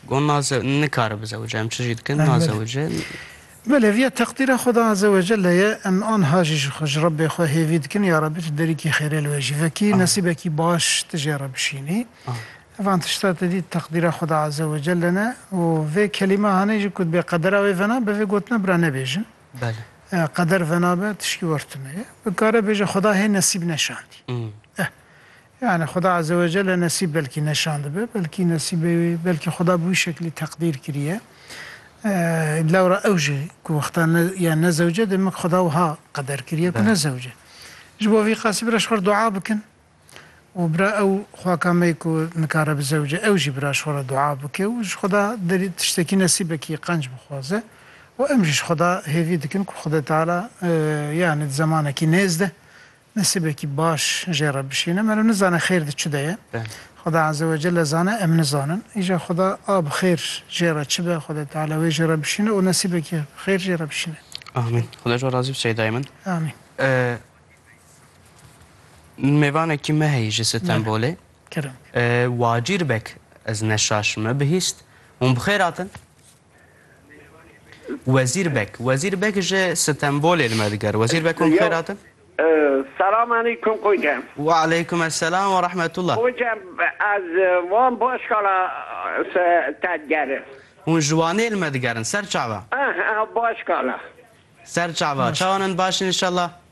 Got naze nikare bizewije em çi jî dikin nazewije. Belê viya teqdîra Xuda Azze ve Celle ye em anha jî ji xwe ji Rebbê xwe hêvî dikin ya Rebbî tu derîkî xêrê li wê jî vekî nesîbekî baş tu jê re bişînî. Van tişta tedî teqdîra Xuda Azze ve Celle ne û vê kelîme hanê jî ku dibê qedera wê vena be vê gotina bira nebêjin. Qeder vena be tişkî wer tune ye. Bikare bêje Xuda hê nesîb neşandî. Eh! Yanî Xuda Azewecelle nesîb belkî neşandibe, belkî nesîbê wê, belkî Xuda bi wî şeklî teqdîr kiriye. Lewra ew jî ku wexta ne ya ne zewce demek Xuda wiha qeder kiriye ku ne zewce. Ji bo vî qasî bira ji xwe re dua bikin û bira ew xwaka me ku nikare bi zewce ew jî bira ji xwe re dua bike û ji Xuda derî tiştekî nesîbekî qenc bixwaze û em jî ji Xuda hêvî dikin ku Xwedê Teala yanî di zemanekî nêz de Nesîbekî baş jê re bişîne. Meriv nizane xêr di çi de ye. Xuda Azewecelle zane em nizanin. Îja Xuda a bi xêr jê re çi be Xwedê Teala wê jê re bişîne û nesîbekî xêr jê re bişîne. Amîn. Xuda ji wan razî be Seydayê min. Amîn. Min mêvanekî me heye ji Stenbolê. Kirin. Wacîr bek ez neşaş me bihîst. Hûn bi xêr hatin? Wezîr Beg, Wezîr Beg ji Stenbolê li me digere. Wezîr Beg hûn bi xêr hatin? Selam aleykum Koca. Wa aleykum esselam wa rahmetullah. Koca ez wan Başkala se te digerim. Hûn ji Wanê li me digerin, ser çava? Ehe, Başkala. Ser çava. Çawan in baş in inşallah?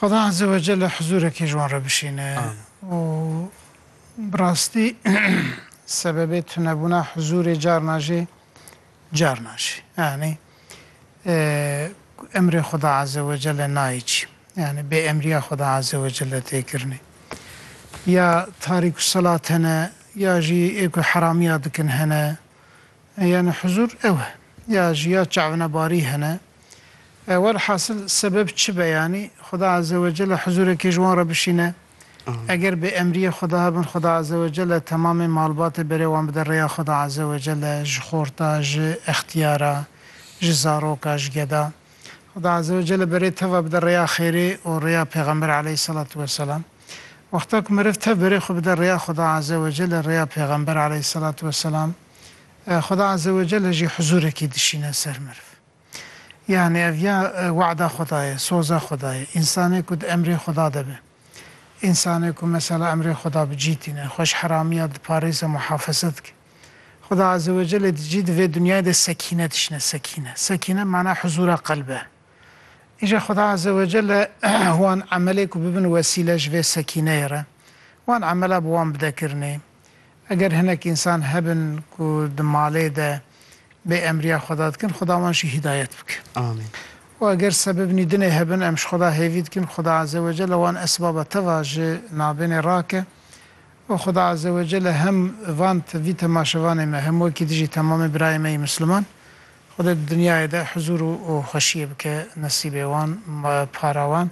Xuda Eze we Celle hizûrekî ji wan re bişîne û bi rastî sebebê tunebûna hizûrê carna jî carna jî yanî emrê Xuda Eze we Celle nayê çî yanî bê emrîya Xuda Eze we Celle tê kirinê ya tarîku selat hene ya jî ê ku heramîya dikin hene yanî hizûr ew e ya jî ya çavnebarî hene Welhasil sebeb çi be yanî Xuda Azewecelle hizûrekê ji wan re bişîne. Eger bi emriyê Xuda hebin Xuda Azewecelle temamê malbatê berê wan bide rêya Xuda Azewecelle ji xorta, ji extiyara, ji zaroka, ji geda. Xuda Azewecelle berê teva bide rêya xêrê û rêya Pêxember Eleyhiselatû Weselam. Wexta ku meriv tev berê xwe bide rêya Xuda Azewecelle, rêya Pêxember Eleyhiselatû Weselam, Xuda Azewecelle jî hizûrekî dişîne ser meriv. Yanî ev ya wada Xweda ye, soza Xweda ye. Însanê ku di emrê Xweda de be. Însanê ku mesela emrê Xweda bi cî tîne, xwe ji heramiya diparêze, muhafeze dike. Xweda Azze ve Celle di cî di vê dinyayê de sekîne dişine, sekîne. Sekîne bi mana huzûra qelb e. Îja Xweda Azze ve Celle wan emelê ku bibin wesîle ji vê sekîneyê re, wan emela bi wan bide kirinê. Eger hinek însan hebin ku di malê de bê emriya Xweda dikin, Xweda wan jî hîdayet bike. Amîn. Û eger sebibnî dinê hebin em ji Xweda hêvî dikin, Xweda Eze Wecelle wan esbaba teva ji navbênê rake. Û Xweda Eze Wecelle hem van vî temaşevanê me hem wekî dijî temamê birayê me yê Misliman, Xwedê di dinyayê de huzûr û xweşiyê bike nesîbê wan, para wan.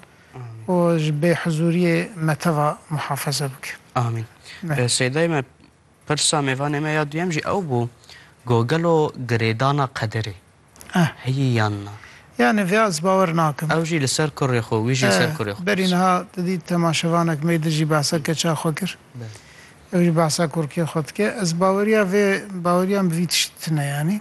û ji bê hizûriyê me teva muhafeze bike. Amîn. Sêdayê me, pirsa mêvanê me ya duyem jî ew bû ku gelo girêdana qederê heye yan na? Yanî vê ez bawer nakim. Ew jî li ser kurê xwe, wî jî li ser kurê xwe. Berî niha tu dît temaşevanek me di jî behsa keça xwe kir. Ew jî behsa kurkê xwe dike. Ez baweriya vê baweriya min vî tiştî tune yanî.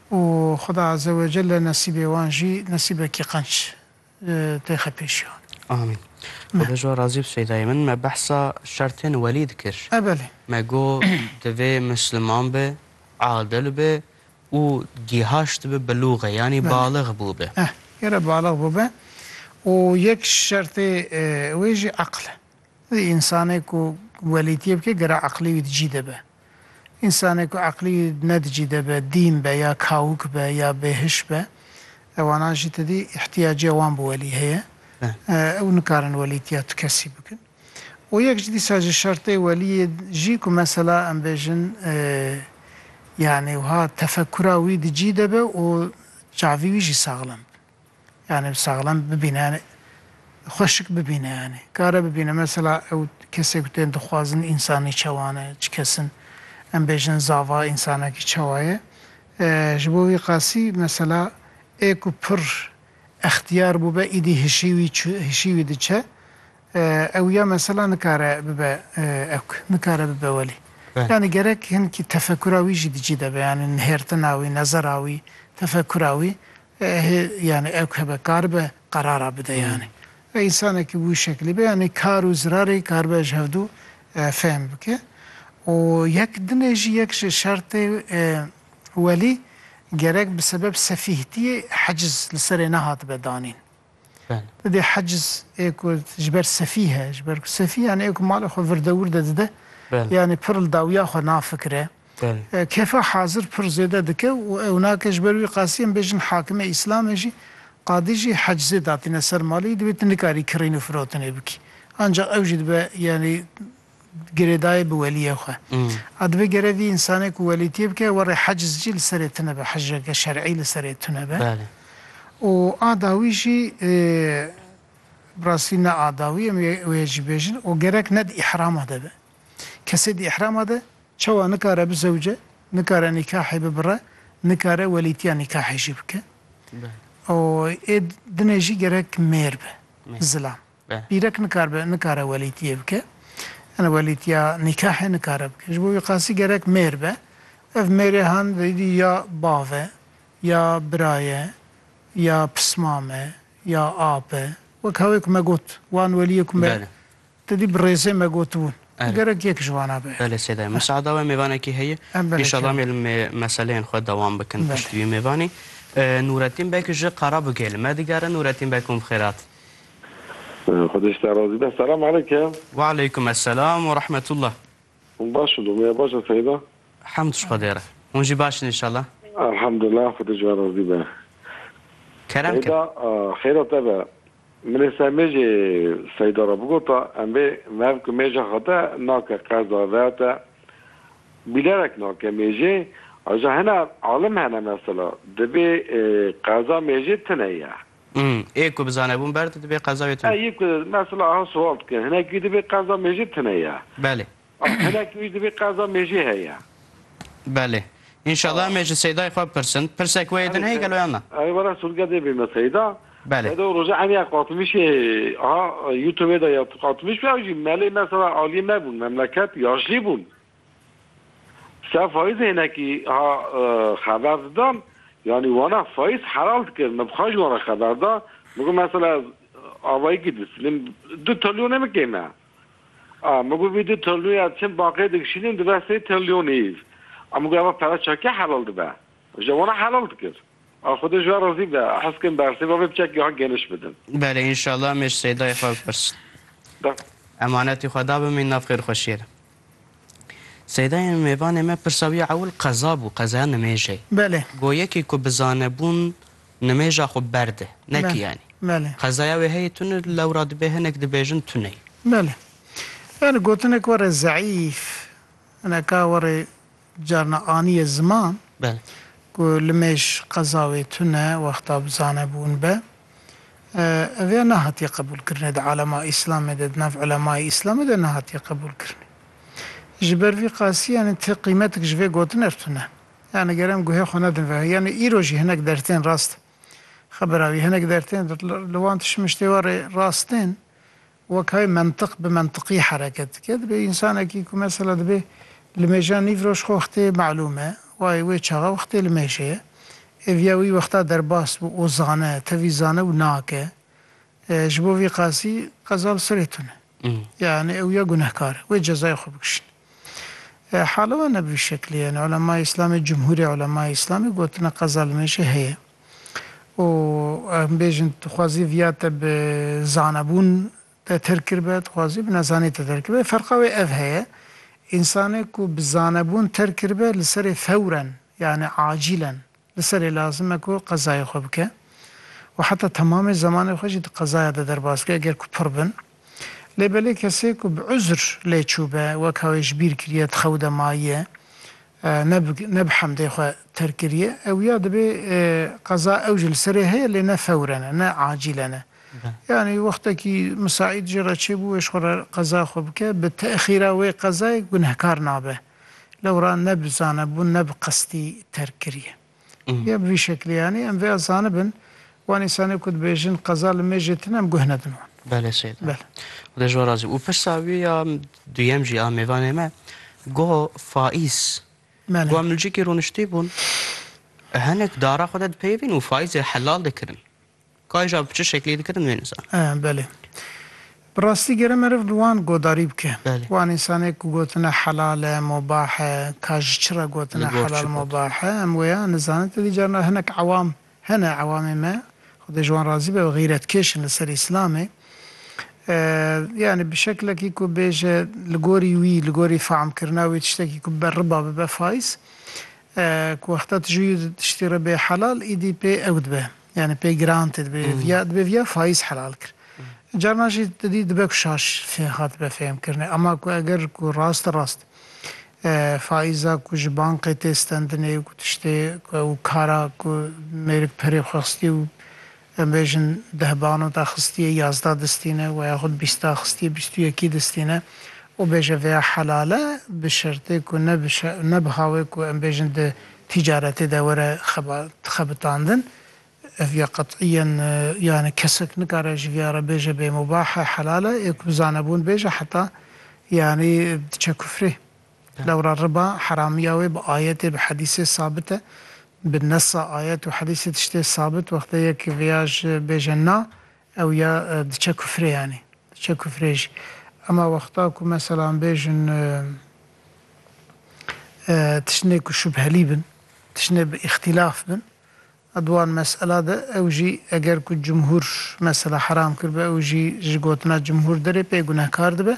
û Xuda Azewecelle nesîbê wan jî nesîbekî qenc tê xepêşiyan. Amîn. Xuda ji wan razî be Seydayê min. Me behsa şertên welî dikir. E belê. Me got divê misliman be, adil be û gîhaşt be bilûxe yanî balix bûbe. Eh, gere balix bûbe û yek şertê wê jî eqil e. Di însanê ku welîtiyê bike gere eqilî wî di cî de be. Însanê ku eqlî ne di cî de be, dîn be ya kawik be ya bêhiş be, ewanan jî tedî îhtîyacê wan bi welî heye. Ew nikarin welîtiya tu kesî bikin. Û yek ji dîsa ji şertê welîyê jî ku mesela em bêjin yanî wiha tefekura wî di cî de be û çavî wî jî saxlem be. Yanî saxlem bibîne yanî xweşik bibîne yanî kare bibîne mesela ew kesê ku tên dixwazin însanî çawa ne çi kes in em bêjin zava însanekî çawa ye ji bo wî qasî mesela ê ku pir extiyar bûbe îdî hişî wî hişî wî diçe ew ya mesela nikare bibe ewk nikare bibe welî yanî gerek hinkî tefekura wî jî di cî de be yanî nihêrtina wî nezera wî tefekura wî Ehê yanî ew ke be karibe qerara bide yanî. Ve însanekî wî şeklî be yanî kar û zirarê karibe ji hevdu fehm bike. Û yek dinê jî yek ji şertê welî gerek bi sebeb sefîhtiyê heciz li serê nehatibe danîn. Di dê heciz ê ku ji ber sefîh e, ji ber ku sefîh yanî ê ku malê xwe vir dewir de dide, yanî pir li dawiya xwe nafikire, kefa hazir pir zêde dike û ew nake. Ji ber wî qasî em bêjin hakimê îslamê jî qadî jî hecizê datîne ser malê wî, divê tu nikarî kirîn û firotinê bikî. Ancaq ew jî dibe yanî girêdayê bi weliyê xwe. A dibe gere vî însanê ku welîtiyê bike werê heciz jî li serê tune be, hicreke şer'î li serê tune be. Û a dawî jî bi rastî ne a dawî em ê wê jî bêjin û gerek ne di îhrama de be. Kesê di îhrama de çawa nikare bizewce, nikare nîkahê bibire, nikare welîtiya nîkahê jî bike. Û ê dinê jî gerek mêr be, zilam. be. Bîrek nikaribe nikare welîtiyê bike. Yane welîtiya nîkahê nikare bike. Ji bo wî qasî gerek mêr be. Ev mêrê han veyîdî ya bav e, ya bira ye, ya pismam e, ya ap e. Wek hewê ku me got wan welîyê ku me Belê. te dî bi rêzê me gotibûn. Erê. Gerek yek ji wana be. Belê sêde ye. Musaada we mêvanekî heye. Em belê Înşallah em ê li mê meseleyên xwe dewam bikin Belê. piştî wî mêvanê. Nûretîn Beg ji Qarabûgê li me digere. Nûretîn Beg hûn bi xêr hat. Xwedê ji te razî be. Selam aleyke. Wealeykum eselam we rahmetullah. Hûn baş in dûmiya baş e seyda? Hemd ji Xwedê re. Hûn jî baş in înşallah. Elhamdulillah Xwedê ji we razî be. Kerem kir. Seyda xêra te be. Min ê semê jî seyda re bigota em vê mev ku mêja xwe te nake qeza ve te bîlerek nake mêjê aja hene alim hene mesela dibê qeza mêjê tune ye. Ê ku bizane bûn ber di dibê qeza wê tune. Ê ku mesela aha sual dike hinek wî dibê qeza mêjê tune ye. Belê. Hinek wî dibê qeza mêjê heye. Belê. Înşallah em ê ji Seyday xwe bipirsin. Pirsek wê yê din heye gelo yan na? Erê were sûrge dê bême Seyda. Belê. Seyda roja em ya qatimîşê aha youtubê de ya tu qatimîş bû ew jî melê mesela aliyê me bûn memleket ya jilê bûn. Sê faiz hênekî ha xeber didan, yanî wana faiz helal dikir. Min bixwe ji wan re xeber da, min got mesela ez avayîkî distînim du trilyonê min kêm e. A min got vî du trilyonê çim banqê digişînim dibe sê trilyonê îv. A min got eva pere çakiya helal dibe. Ji wana helal dikir. A Xwedê ji we razî be. Hez kirin bersê ve vê piçekî ha geniş bidin. Belê înşallah em ê ji Seydayê xwe bipirsin. Emanetî xwe dabin mîn nav xêrxweşiyê de. Seydayên mêvanê me pirsa wî ewil qeza bû, qezaya nimêjê. Belê. Go yekî ku bi zanebûn nimêja xwe berde, ne ki yanî. Belê. Qezaya wê heyê tune lewra dibê hinek dibêjin tuneyî. Belê. Yanî gotinek were zeîf, hinek a were Carna aniyê ziman ku limêj qeza wê tune wexta bi zane bûn be. Ev ya nehatiye qebûlkirinê di alema îslamê de, di nav ulemayê îslamê de nehatiye qebûlkirinê. Ji ber vî qasî yanî ti qîmetik ji vê gotin ev tune. Yanî ger em guhê xwe nedin vê yanî îro jî hinek dertên rast e. Xebira wî hinek dertên li wan tişmiştê warê rast tên. Weke mentiq bi mentiqî hereket dike, dibê însanekî ku mesela dibê li mêja nîv roj xwe wextê melûm e, wayê wê çaxa wextê li mêjê ye. Ev ya wî wexta derbas bû û zane, tevî zane û nake. Ji bo vî qasî qeza li serê tune. Yanî ew ya gunehkar e. Wê cezayê xwe bikişîne. Hala wan ne bi vî şeklê ye. Yani Ulemayê Îslamê, Cumhurê Ulemayê Îslamê gotine qeza li me jî heye. Û em bêjin dixwazî viya te bi zanebûn te tir kiribe, dixwazî bi nezanî te tir kiribe. Ferqa wê ev heye. Însanê ku bi zanebûn tir kiribe li serê fewren yani acîlen Li serê lazim e ku qezayê xwe bike û heta temamê zemanê xwe jî di qezaya de derbas bike eger ku pir bin. Lê belê kesê ku bi uzr lê çûbe, weka wê ji bîr kiriye, di xew de mayiye, ne bi ne bi hemdê xwe terk kiriye, ew ya dibê qeza ew jî li serê heye lê ne fewren e, ne acîlen e. Yanî wextekî misaîd jê re çêbû wê ji xwe re qeza xwe bike, bi têxîra wê qezayê gunehkar nabe. Lewra ne bi zanebûn ne bi qestî terk kiriye. Ya bi vî şeklê yanî em vêya zanibin wan însanê ku dibêjin qeza li mêjê tune em guh nedin wan. Belê sêde. Belê. Xuda ji wan razî bû. Û pirsa wî ya duyem jî a mêvanê me goh faiz. Belê. Goh milcikî rûniştî bûn. Hinek dara xwe de dipeyivîn û faizê helal dikirin. Kaja bi çi şeklî dikirin wê nizan. Eh belê. Bi rastî gere meriv li wan godarî bike. Wan însanê ku gotine helal e, mobah e, ka ji çi re gotine helal mobah e, em wêya nizanin. Ti dî carina hinek ewam hene, ewamê me, xwedê ji wan razî be, xîretkêş in li ser îslamê. Eh yanî bi şeklekî ku bêje li gorî wî, li gorî fehmkirina wî tiştekî ku bibe riba, bibe faiz. Eh ku wexta tu ji wî tiştî re bê helal, îdî pê ew dibe. Yani pê giran tê dibê viya dibê viya faiz helal kir. Carna jî tu dî dibe ku şaş fê hatibe fêhmkirinê. Ema ku eger ku rast rast faiza ku ji bankê tê stendinê û ku tiştê ku ew kara ku mêrik perê xwe xistiye û em bêjin deh banota xistiye yazda distîne we yaxud bîsta xistiye bîst û yekî distîne û bêje vêya helal e bi şertê ku ne bi ne bi hawê ku em bêjin di Tîcaretê de were xebitandin. Ev ya qet'î ye yanî kesek nikare ji vî ya re bêje bê mubah e helal e, ê ku bi zanebûn bêje heta yanî diçe kufrê. Lewra riba heramîya wê bi ayetê bi hedîsê sabit e. Bi nesa ayet û hedîsê tiştê sabit wextê yekî vêya ji bêje na, Ew ya diçe kufrê yanî diçe kufrê jî. Ema wexta ku meselan bêjin tiştine ku şubhelî bin, tiştine bi îxtîlaf bin a di wan mesela de ew jî eger ku cumhûr mesela heram kiribe ew jî ji gotina cumhûr derê pê gunehkar dibe.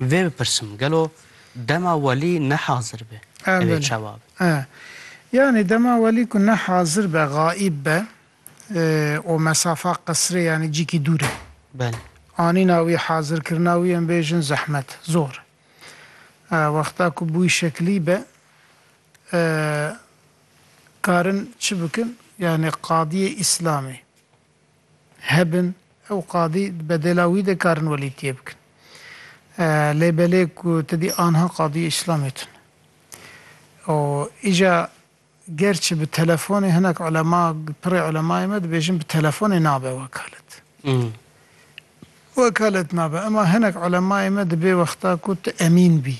Vê bipirsim gelo dema welî ne hazir be ev ê çawa be? E yanî dema welî ku ne hazir be, xaîb be û mesafa qesirê yanî cîkî dûr e. Belê. Anîna wî, hazirkirina wî em bêjin zehmet, zor e. Wexta ku bûy şeklî be karin çi bikin? Yanî qadiyê îslamî hebin ew qadî di bedêla wî de karin welîtiyê bikin. Lê belê ku tidî anha qadîyê îslamê tun. Û îja gerçi bi telefonê hinek ulema pirê ulemayê me dibêjin bi telefonê nabe wekalet. Wekalet nabe ema hinek ulemayê me dibê wexta ku tu emîn bî.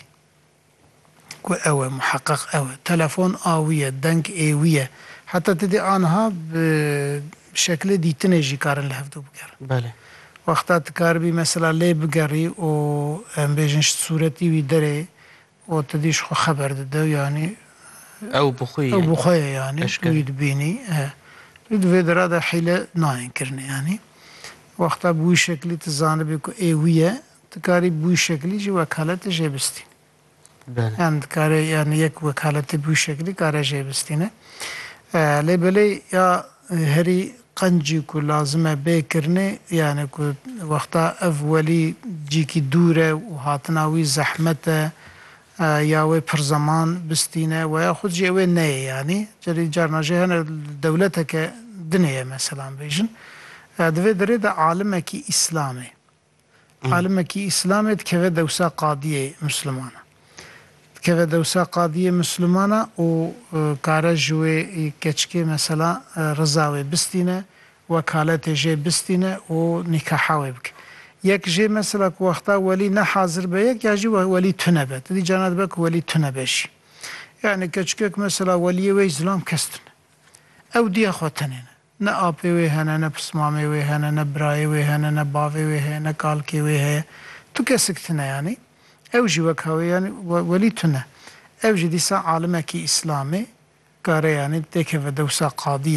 Ku ew e, muheqeq ew e. Telefon a wî ye, deng ê wî ye. Heta ti dê anha bi şekilê dîtinê jî karin li hev dû bigerin. Belê. Wexta ti karibî mesela lê bigerî û em bêjin ji sûretî wî derê û ti dî ji xwe xeber dide yanî Ew bi xwe ye. Ew bi xwe ye yanî tu wî dibînî. He. Lê di vê dera de hîle nayên kirinê yanî. Wexta bi wî şekilî ti zanibî ku ê wî ye, Tu karî bi wî şeklî jî wekaletê jê bistînî. Yan dikare yan yek wekaletê bi wî şeklî kare jê bistîne. Lê belê ya herî qencî ku lazim e bê kirinê yani ku wexta ev welî cîkî dûr e û hatina wî zehmet e ya wê pir zeman bistîne weya xwed jî ewê neyê yanî cerî carna jî hene li dewleteke dinê ye meselan bêjin. Di vê derê de alimekî îslamê. Alimekî îslamê dikeve dewsa qadiyê mislimana. Dikeve dewsa qadiyê mislimana û kare ji wê keçikê mesela riza wê bistîne, wekaletê jê bistîne û nîkaha wê bike. Yek jê mesela ku wexta welî ne hazir be yek ya jî welî tune be. Ti dî carna dibe ku welî tune be jî. Yanî keçikek mesela weliyê wê îslam kes tune. Ew dîya xwe tenê ne. Ne apê wê hene, ne pismamê wê hene, ne birayê wê hene, ne bavê wê heye, ne kalkê wê heye. Tu kesik tune yanî. Ew jî wek ha wê yanî welî tune. Ev jî dîsa alimekî îslamê kare yanî têkeve dewsa qadî.